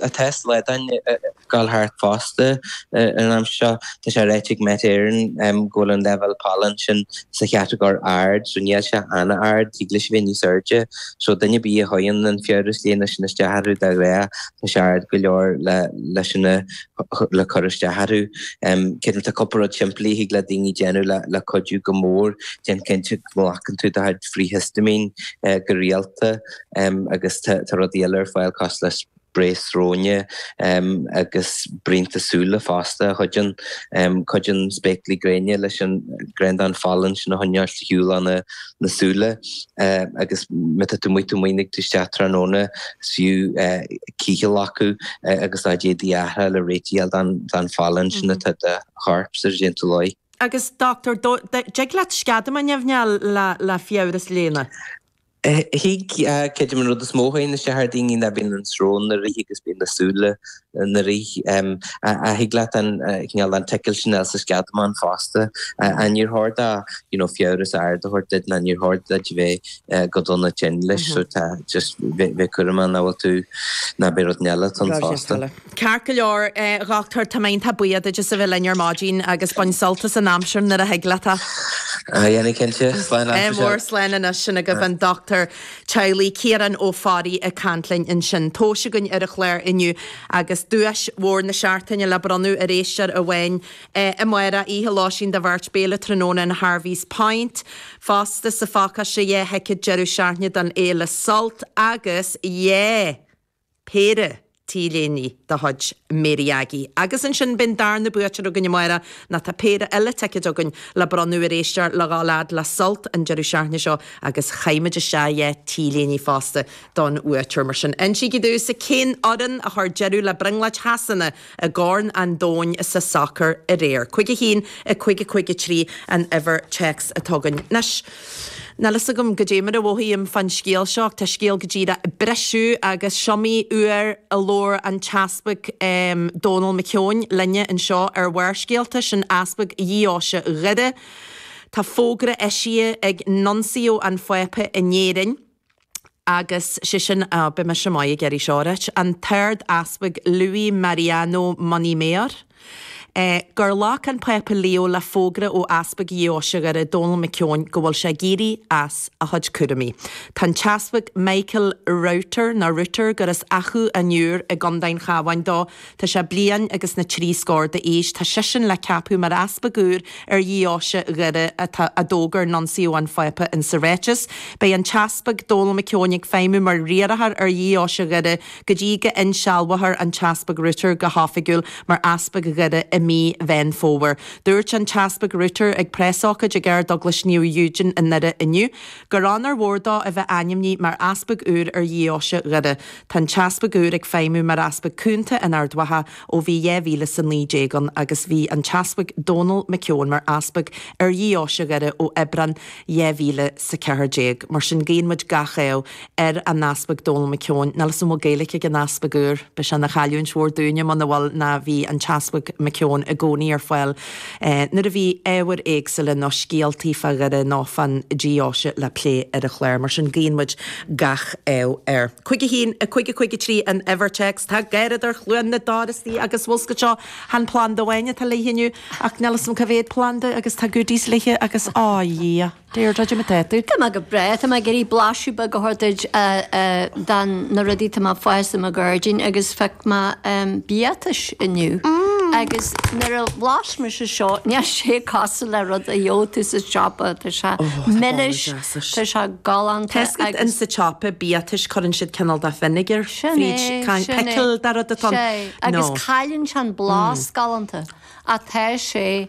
Tá slaodáin ag dul thart fosta ag an am seo. Tá sé ráite ag Met Éireann go bhfuil an leibhéal pailin sin sa chatagóir ard so níl sé an-ard, thig leis a bheith níos airde. So duine ar bith a théann an fiabhras léana sin isteach orthu, dáiríre, tá sé ard go leor le sin a cur isteach orthu. Creidim tá cúpla rud simplí a thig le daoine a dhéanamh le cuidiú go mór, déan cinnte go nglacann tú do chuid frith-hiostaimín go rialta, agus tá rudaí eile ar fáil cosúil le sprae sróine agus braonta súile fosta a chuidíonn. Cuidíonn spéaclaí gréine leis an gráinnín den phailin sin a choinneáilt ar shiúl óna súile agus má tá tú amuigh nuair a thig tú isteach tráthnóna is fiú cith a ghlacadh agus do chuid éadaí a athrú le réidh a fháil den phailin sin atá ar do chorp i ndiaidh an tsiúlóid. Agus a dhochtúir, an dtig leat sceadamán nimhneach a fháil le fiabhras léana? Thig, creidim an rud is mó a fheiceann sé ar dhaoine ná go mbíonn an srón ina rith agus bíonn na súile ina rith. Ach thig leat an cineál an tickill sin a fháil sa sceadamán fosta. Ach níor chóir dó, you know, fiabhras ard a thabhairt duit ná níor chóir duit a bheith go dona tinn leis, so tá just bheith cúramach nach bhfuil tú, nach bhfuil rud inteacht eile ann fosta. Ceart go leor, a Dhoctúir, tá mé iontach buíoch duit as a bheith linn ar maidin agus bain sult as an aimsir nuair a thig leat. Déanfaidh cinnte. Slán anois. Ádh mór. Slán anois. Sin agaibh an dochtúir teaghlaigh, Ciarán Ó Fearraigh, ag caint linn ansin. Tomhas againn ar an chlár inniu agus duais mhór na seachtaine le bronnadh ar éisteoir amháin amárach, oíche lóistín do bheirt, béile tráthnóna in Harvey's Point fosta sa phácáiste, dhá thicéad deireadh seachtaine don fhéile Sult agus yeah! péire T-léinte de chuid Mary Aggie. Agus ansin beidh an darna buaiteoir againn, amárach, nó tá péire eile ticéad againn le bronnadh ar éisteoir le dhul fhad le Sult an deireadh seachtaine seo agus caithfimid isteach dhá T-léine fosta don bhuaiteoir. Mar sin, insígí domhsa cén fhoireann a chuir deireadh le brionglóid Shasana! i gCorn an Domhain sa sacar aréir. Cuig a haon i cuig a cuig a trí an uimhir téacs atá againn. Anois, níl a fhios agam goidé mar a mhothaím fán scéal seo, tá scéal go díreach ag briseadh agus is iomaí uair a labhair an tEaspag Dónall McKeown linne anseo ar Bharrscéalta, sin Easpag Dheoise Dhoire. Tá fógra eisithe ag Nuncio an Phápa in Éirinn, agus sé sin, á, bíodh mise maith ag iarraidh seo a ráit, an tArdeaspag Luis Mariano Montemayor, é, gur ghlac an Pápa Leo le fógra ó Easpag Dheoise Dhoire, Dónall McKeown, go bhfuil sé ag éirí as a chuid cúraimí. Tá an tEaspag Michael Router, nó Router, gur as Achadh an Iúir i gCondae an Chabháin dó, Tá sé bliain agus na trí scór d'aois, tá seisean le ceapadh mar easpag úr ar dheoise Dhoire atá, a d'fhógair Nuncio an Phápa insa ráiteas. Beidh an tEaspag Dónal McKeown ag feidhmiú mar riarthóir ar dheoise Dhoire go dtí go n-insealbhófar an tEaspag Router go hoifigiúil mar Easpag Dhoire i mí Mheán Fómhair. Dúirt an tEaspag Router ag preasócáid ag Ardeaglais Naomh Eugene i nDoire inniu gur onóir mhór dó a bheith ainmnithe mar easpag úr ar dheoise Dhoire. Tá an t-easpag úr ag feidhmiú mar easpag cúnta in Ard Mhacha ó bhí 2019 ann agus bhí an t-easpag Dónall Mac Eoin mar easpag ar dheoise Dhoire ó Aibreán 2014. Mar sin guíonn muid gach ádh ar an easpag Dónall Mac Eoin. Níl 'fhios a'm an bhfuil Gaeilic ag an easpag úr. Beidh sé ina chailliúint mhór dúinne muna bhfuil nó bhí an t-easpag Mac Eoin i gcónaí ar fáil Nuair a bhí ábhair éagsúla nó scéaltaí fá Dhoire nó fán Deoise le plé ar an chlár, mar sin, guíonn muid gach ádh air. Cúig a haon, a cúig, a cúig a trí an uimhir téacs. Tá garradóir Chluain na dTor istigh agus bhfuil 'fhios agat seo, chan planda amháin atá léithe inniu, ach níl 'fhios a'm cé mhéad planda agus tá goodies léithe agus, á Dhia! Deirdre, goidé mar tá tú? Tá mé go breá, tá mé ag iarraidh blaiseadh beag a thabhairt duit de na rudaí atá mé ag fás i mo ghairdín agus phioc mé biatais inniu agus nuair a bhlais mise seo, níl sé cosúil le rud a gheobhadh tú sa tsiopa, tá sé milis, tá sé galánta. Tesco agus. In sa tsiopa biatais cuireann siad cineál de vinegar fríd, pickle de rud atá ann. Sin é, sin é, agus cailleann sé an blas galánta ach tá sé.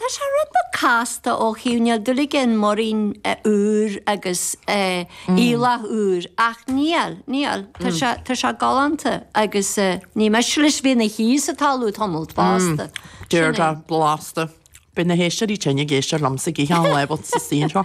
Tá sé rud beag casta ó thaobh, níl dúil aige in múirín úr agus aoileach úr ach níl, níl, tá sé galánta agus ní miste leis bheith ina shuí sa talamh tamalt fosta. Deargán, blasta. Beidh na héisteoirí tinn ag éisteacht liomsa ag ithe an leibhéal sa stiúideo seo.